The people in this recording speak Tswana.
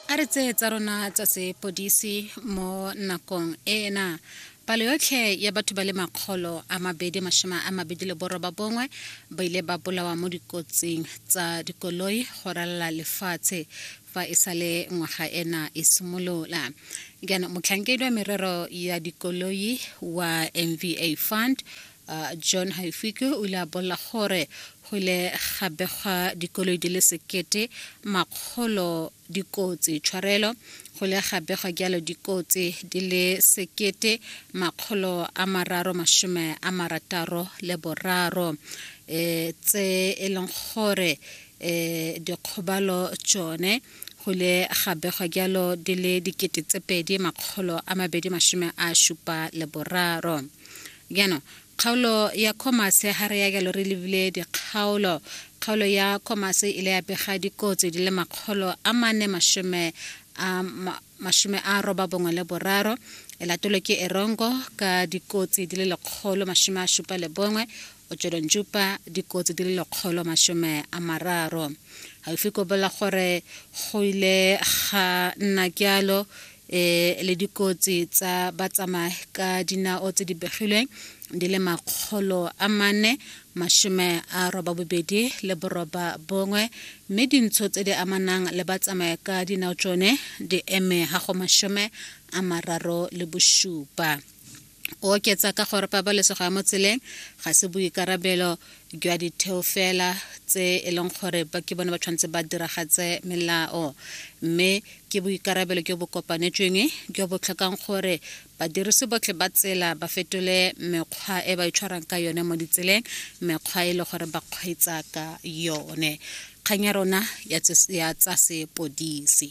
a re tseye tsa rona tsa sepodisi mo nakong ena palo yotlhe ya batho ba le makgolo a mabedi mashome a mabedi le boroba bongwe ba ile ba bolawa mo dikotsing tsa dikoloi go ralala lefatshe fa e sa le ngwaga ena e simolola jaanong motlhankedi wa merero ya dikoloi wa mva fund Uh, john haifike o ile a bolela gore go ile ga begwa dikoloi di le sekete makgolo dikotsi tshwarelo go ile ga begwa jalo dikotsi di le sekete makgolo a mararo masome a marataro le boraro um tse e leng gore um dikgobalo tsone go ile ga begwa jalo di le dikete tse pedi makgolo a mabedi masome a šupa le boraro Jaanong, kgaolo ya Commerce ha re ya jalo re lebile dikgaolo. Kgaolo ya Commerce ile ya bega dikotsi di le makgolo a mane mashome a mashome a roba bongwe le boraro e latolwe ke Erongo ka dikotsi di le lekgolo mashome a shupa le bongwe Otsholonjupa dikotsi di le lekgolo mashome a mararo gaufi ko bola gore go ile ga nna jalo e le dikotsi tsa batsamaya ka dinao tse di begilweng di le makgolo a mane mashome a roba bobedi le boroba bongwe mme dintsho tse di amanang le batsamaya ka dinao tsone di eme ga go mashome a mararo le bosupa o oketsa ka gore pabalesego ya mo tseleng ga se boikarabelo jwa ditheo fela tse e leng gore ke bone ba tshwanetse ba diragatse melao mme ke boikarabelo jo bo kopanetsweng jo bo tlhokang gore badirisi botlhe ba tsela ba fetole mekgwa e ba itshwarang e ka yone mo ditseleng mekgwa e le gore ba kgweetsa ka yone kgang ya rona ya tsa sepodisi